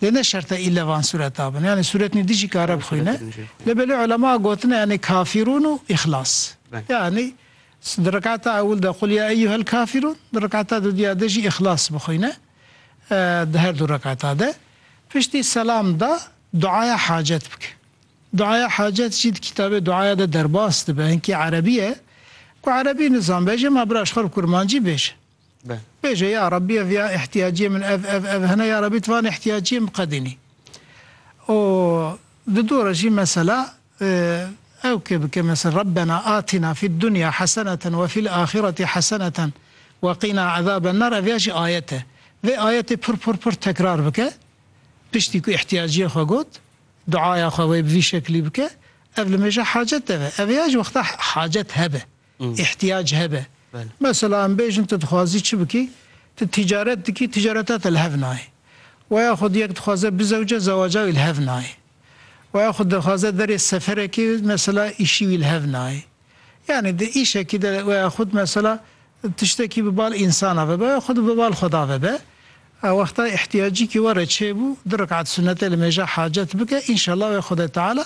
Lê ne şert e îlle van sureta bin. Yanî suret nû dijî kare bixwîne. Lê belê ulema gotine yanî kafîrûn û îxlas. Yanî di rekata ewil de qul ya eyyuhel kafîrûn, di rekata dudîya de jî îxlas bixwîne. Di her du rekata de. Piştî selam da duaya hacet bike. Duaya hacet jî di kitabê duaya de derbas dibe. Hinkî erebî ye. Ku erebî nizan bêje ma biraşxwe bi kurmancî bêje. be. Bêje ya Rabbî ev ya îhtîyaciyê min ev ev ev hene ya Rabbî tu van îhtîyaciyê min biqedînî. Û di dû re jî mesela ew kê bike mesela Rabbena atîna fîd dunya heseneten we fîl axîretî heseneten we qîna ezaben nar ev ya jî ayet e. Vê ayetê pir pir pir tekrar bike piştî ku îhtîyaciyê xwe got duaya xwe wê bi vî şeklî bike ev li mêja hacet de be. Ev ya jî wexta hacet hebe. îhtiyac hebe. Mesela em bêjin tu dixwazî çi bikî, tu tîcaret dikî, tîcareta te li hev nayê. Wa ya xwe yek dixwaze bizewce, zewaca wî li hev nayê. Wa ya xwe dixwaze derê seferekê, mesela îşî wî li hev nayê. Yanî di îşekî de wa ya xwe mesela tiştekî bi bal însana vebe, wa ya xwe bi bal Xweda vebe. A wexta îhtiyacîkî we re çêbû, du rekat sunete li mêja hacet bike, înşellah wê Xwedê Teala,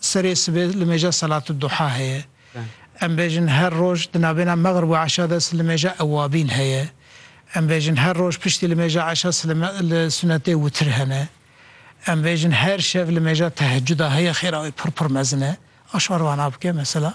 Serê sibê limêja Selatid Duha heye. Em bêjin her roj di navbêna Megrib û Eşa de slimêja Ewabîn heye. Em bêjin her roj piştî limêja Eşa slime li sunetê Witr hene. Em bêjin her şev limêja Tehecuda heye xêra wê pir pir mezin e. A şar vana bike mesela.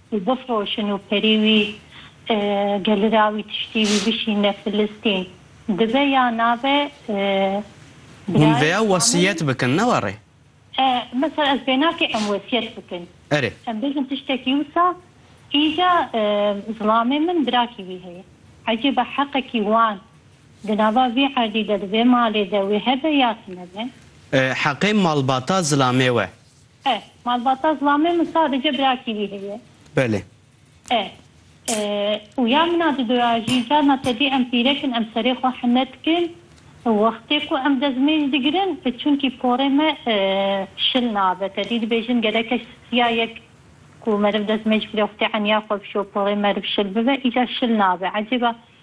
Wî bifroşin û perî wî geli ra wî tiştî wî bişîne Filistîn. Dibe ya nabe Hûn birayê veya Şamûn wesiyet bikin ne wa rê? E, mesela ez bêna ke em wesiyet bikin. Erê. Em bêjin tiştekî wisa, îca zilamê min birakî wî heye. Ecêba heqekî wan di nava vê erdî de, di vê malê de wê hebe ya tunebe? E, heqê malbata zilamê we. E. Malbata zilamê min sadece birakî wî heye. Belê. E. Û ya min a dido ya jî carna tedî em pîrek in em serê xwe hime dikin û wextê ku em dezmêj digirin çunkî porê me şil nabe tedî dibêjin gereke siya yek ku meriv dezmêj bigire wextê eniya xwe bişo porê meriv şil bibe îcar şil nabe ecêba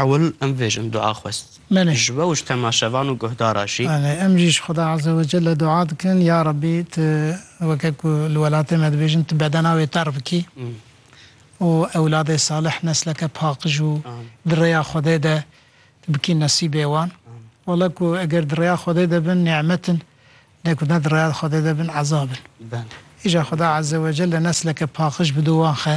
Ewil em vê jin dua xwest. Belê. Ji we û ji temaşevan û guhdaran jî. Belê. Em jî ji Xweda Eze we Celle dua dikin, Ya Rebbî tu weke ku li welatê me dibêjin tu bedena wê terr bikî û ewladê salih, nesleke paqij û di rêya Xwedê de tu bikî nesîbê wan. Wele ku eger di rêya Xwedê de bin nîmet in, lê ku ne di rêya Xwedê de bin ezab in. Îja Xweda Eze we Celle nesleke paqij bido wan xe.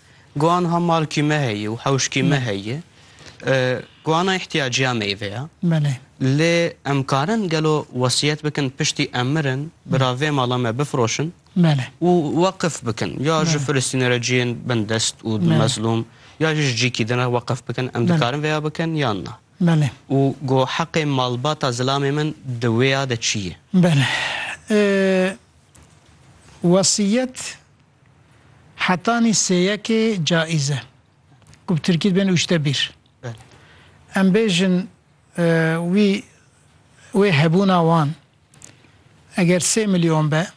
Guhan ha malkî me heye û hewşkî me heye. Guhana îhtîyaciya meyve ye. Belê. Lê em karin gelo wesîyet bikin piştî em mirin bira vê mala me bifiroşin Belê. û weqif bikin. Ya ji Filistînê re ciyên bin dest û di mezlûm ya jî ji cîkî din re weqif bikin. Em dikarin vêya bikin yan na? Belê. Û go heqê malbata zilamê min di wêya de çi ye? Belê. Wesîyet. Hetanî sêyekê caiz e ku bi tirkî dibêne ûşte bîr. Em bêjin wî wê hebûna wan eger sê milyon be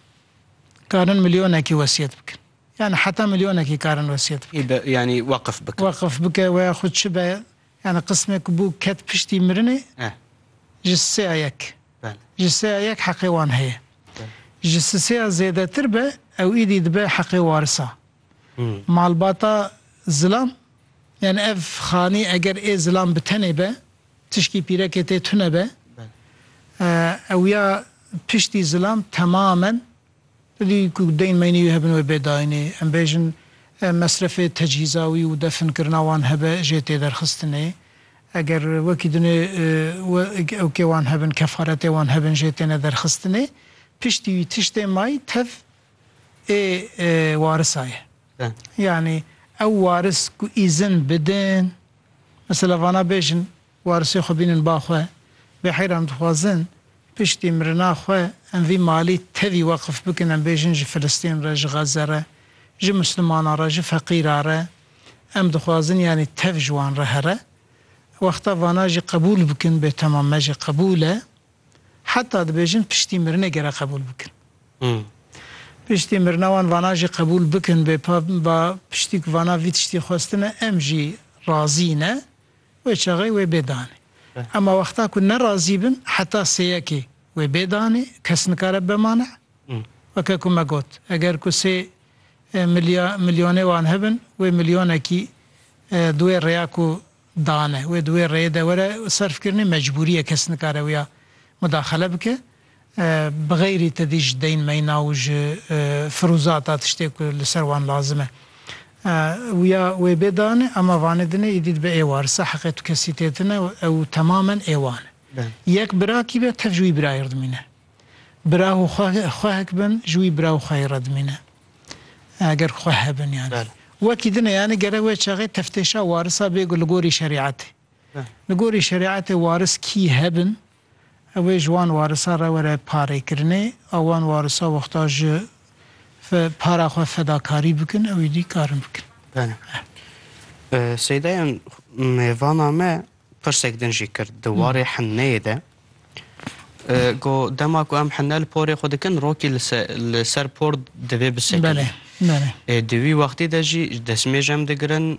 karin milyonekî wesiyet bikin. Yani heta milyonekî karin wesiyet bikin. Yanî weqif bikin. Weqif bike weya xwe çi be Yanî qismê ku bû ket piştî mirinê ji sêya yek ji sêya yek heqê wan heye. Ji sisêya zêdetir be ew îdî dibe heqê warisa. Malbata zilam yanî ev xanî eger ê zilam bi tenê be tişkî pîrekê tê tune be ew ya piştî zilam temamen Di ku deyên meynî wî hebin wê bê dayînê, em bêjin mesrefê tecîza wî û definkirina wan hebe jê tê derxistinê. Eger wekî dinê ewkê wan hebin, kefaretê wan hebin jê têne derxistinê. Piştî wî tiştê may tev ê warisa ye. Yanî ew waris ku îzin bidin, mesela vana bêjin, Warisê xwe bînin ba xwe. Bêheyr em dixwazin piştî mirina xwe em vî malî tevî weqf bikin, em bêjin ji Filistîn re, ji Xeze re, ji Mislimanan re, ji feqîran re, em dixwazin yanî tev ji wan re here. Wexta vana jî qebûl bikin bêtemam me jî qebûl e. Heta dibêjin piştî mirinê gere qebûl bikin. Piştî mirina wan vana jî qebûl bikin bêpa ba piştî ku vana vî tiştî xwestine em jî razî ne. Wê çaxê wê bê danê. Ema wexta ku ne razî bin heta sê yekê wê bê danê kes nikare bibe mane. Weke ku me got eger ku sê milya milyonê wan hebin wê milyonekî di wê rêya ku dane wê di wê rêyê de were serfkirinê mecbûrî ye kes nikare wiya mudaxele bike. Bi xeyrî tedî ji deyn meyna û ji firûzata tiştê ku li ser wan lazim e. Wûya wê bê dane ema vanê dine îdî dibe êwar sa heqê tu kesî tê tine û ew temamen êwan e. Yek bira kî be tev ji wî birayê re dimîne. Bira û xwehek bin ji wî bira û xwehê re dimîne. Eger xweh hebin yanî. Wekî dine yanî gerek wê çaxê teftêşa warisa bê ku li gorî şerîetê. Li gorî şerîetê waris kî hebin Ew ê ji wan warisa re were parêkirinê. A wan warisa wexta ji fe para xwe fedakarî bikin ew êdî karin bikin. Belê. Seydayan mêvana me pirsek din jî kir di warê hinneyê de go dema ku em hinne li porê xwe dikin rokî li ser por divê bisekin. Belê. Belê. Di wî wextî de jî destmêj em digirin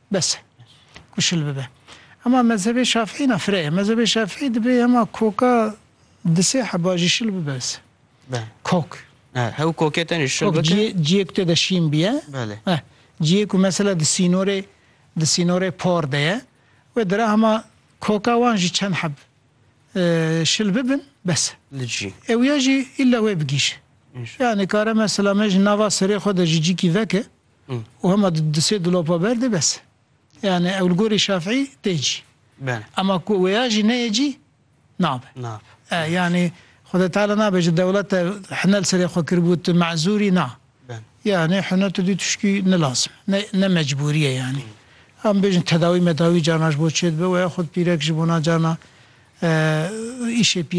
Bes e ku şil bibe. Hema mezhebê Şafîî na fire ye. Mezhebê Şafîî dibe hema koka di sê heba jî şil bibe ez. Kok. He, hew kokê tenê şil bibe. Ciyê, ciyê ku tê de şîn biye. Belê. He. Ciyê ku mesela di sînorê di sînorê por de ye. Wê dira hema koka wan jî çend heb şil bibin bes e. Li cî. Ew ya jî îlla wê bigîje. Yani kare mesela me ji nava serê xwe de ji cîkî veke. û hema du sê dulapa ber de bes e. Yani ew li gorî Şafîî tê cî. Ema ku wêya jî neyê cî nabe. E yani Xweda Teala nabe ji dewlete hinel serê xwe kiribû tu mezûrî na. Yani hune tu dî tişkî nilazim e. Ne mecbûrî ye yani. Em bêjin tedawî medawî carna ji bo çê dibe weya xwe pîrek ji bona carna îşê pîrek.